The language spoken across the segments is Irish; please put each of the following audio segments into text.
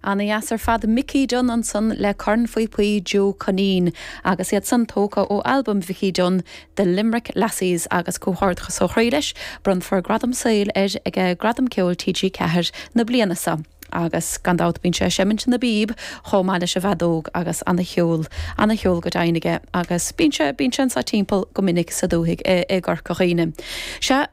Ana dheas ar fad Micí Dunne ansan le cornphíopaí Joe McKenna agus iad san tógtha ó albam Mhicí Dunne The Limerick Lassies agus comhghairdeachas ó chroí leis, bronnfar gradam saoil air ag Gradam Ceoil TG4 na bliana seo. Agus gan dabht bíonn sé ag seimint na bpíob chomh maith leis an bhfeadóg agus ana cheol, ana cheol go deimhin aige agus bíonn sé, bíonn sé anso timpeall go minic sa dúthaigh i gCorca Dhuibhne. Sea.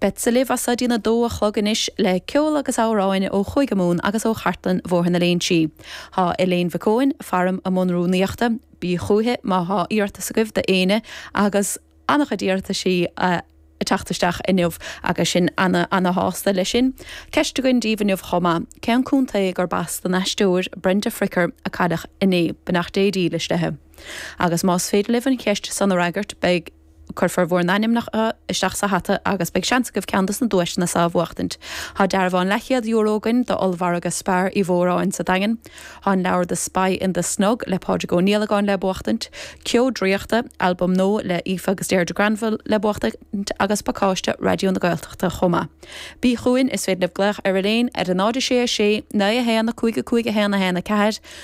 Beadsa libh as so go dtí a dó a chlog anois le ceol agus amhráin ó Chúige Mumhan agus ó chartlann Bhóthar na Léinsí. Tá Elaine Mhic Eoin, faram i mbun rúnaíochta. Bíg' chúiche má thá iarratas agaibh do éinne agus an-chuid iarrataisí a' teacht isteach inniu agus sinn ana-ana-shásta le sin. Ceist againn díbh inniu chomh maith, cén contae gurb as don aisteoir Brenda Fricker a cailleadh inné? Beannacht Dé dílis leithe. Agus más féidir libh an cheist san a fhreagairt beidh. Cuirfear bhur n-ainmneacha isteach sa hata agus beidh seans agaibh ceann dos na duaiseanna so a bhuachtaint. Tá dearbhán leathchéad euro againn do Ollmhargadh Spar Uí Mhóráin sa Daingean. Tá an leabhar The Spy in the Snug le Pádraig Ó Niallagáin le buachtaint, Ceo Draíochta, albam nua le Aoife agus Deirdre Granville le buachtaint agus pacáiste Raidió na Gaeltachta chomh maith. Bí chugainn, is féidir libh glaoch ar Elaine ar a 0 6 6 9 1 5 5 1 1 4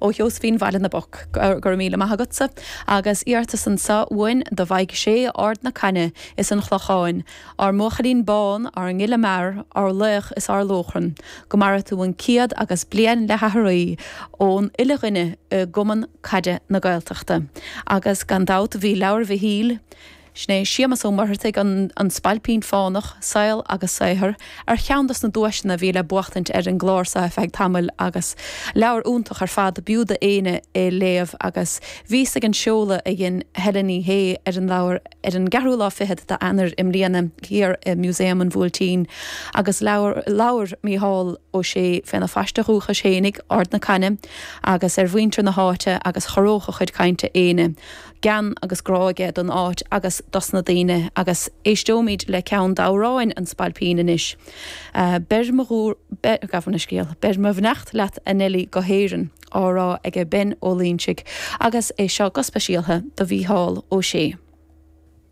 ó Sheosaimhín Bhaile na bPoc, Go raibh míle maith agatsa agus iarratas anso againn do Mhaidhc Sé, Ard na Caithne is an Chlocháin, ár mbuachaillín bán, ár ngile mear, ár laoch is ár lóchrann. Go maire tú an céad agus bliain le haithrí ón uile dhuine i gCumann Caide na Gaeltachta. Agus gan dabht bhí leabhar Mhichíl. Shé, Séamus Ó Muircheartaigh, An Spailpín Fánach, Saol agus Saothar, ar cheann dos na duaiseanna a bhí le buachtaint ar an gclár so ar feadh tamaill agus leabhar iontach ar fad b'fhiú do éinne é léamh agus bhíos ag an seoladh a dhein Helen Ní Shé ar an leabhar ar an gceathrú lá fichead d'Eanair i mbliana thiar i Museum an Bhuailtín agus labhair labhair Micheál Ó Sé féna phaiste dhúchais fhéinig, Ard na Caithne, agus ar mhuintir na háite agus chorródh a chuid cainte éinne. gean agus grá aige don áit agus dos na daoine agus éisteoimíd le ceann d'amhráin an Spailpín anois. Beir mo, gabh mo scéal, beir mo bheannacht leat a Nellie go hÉireann, á rá aige Ben Ó Loingsigh agus é seo go speisialtha do Mhícheál Ó Sé.